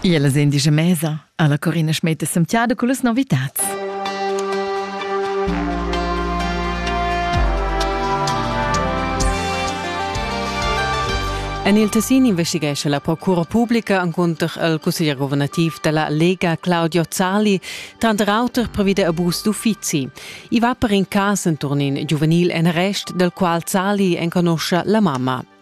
Iela sen disch a mesa alla Corina Schmeter Santiago con las novitats. En il Tessin investighescha la procura pubblica encunter il cusseglier governativ della Lega Claudio Zali, tranter auter previ de abus d'uffizi. I va per in cas entorn in giuvenil en arrest, del qual Zali enconosce la mamma.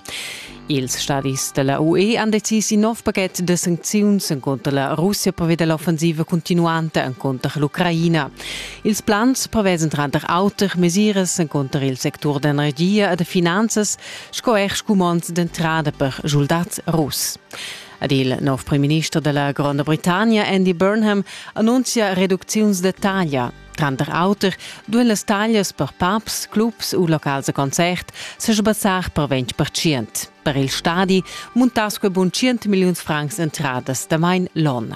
Ils stadis della UE han decis in nov pachet de sancziuns encunter la Russia pervia dell'offensiva continuanta encunter l'Ucraina. Ils plans prevesan tranter auter mesiras encunter il sectur d'energia e de finanzas sco er scumonds d'entrada per soldats russ. Ed il nov premierminister della Gronda Britannia Andy Burnham annuncia reducziuns de taglia Tranter auter duein las taglias per pubs, clubs u locals da concert sebassar per 20 percent. Per il stadi muntass quei bun 100 milliuns francs entradas damain l'onn.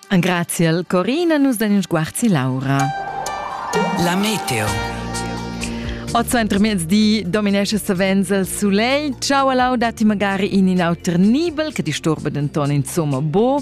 Grazie al Corina, nus den in sguarzi Laura. La meteo. Oz intermezdi dominesce savens il soleil. Ciao a lau dati magari in in auter nibel, che disturba denton insomma bo.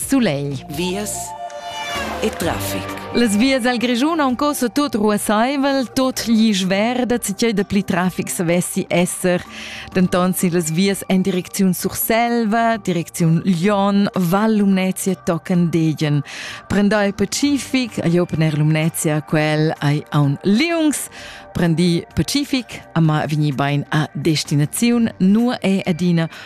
Sulegl. Vias e trafic. Las vias al Grischun han cosa tot ruassaivel, tot gli schwer, da tgei da pli trafic savessi esser. Denton sin las vias en direcziun Surselva, direcziun Lyon, Val Lumnezia tocan degen. Prendai Pacific, agli Open Air Lumnezia, quel ai aun Liungs. Prendi Pacific, amma vegni bein a destinaziun, nur e adina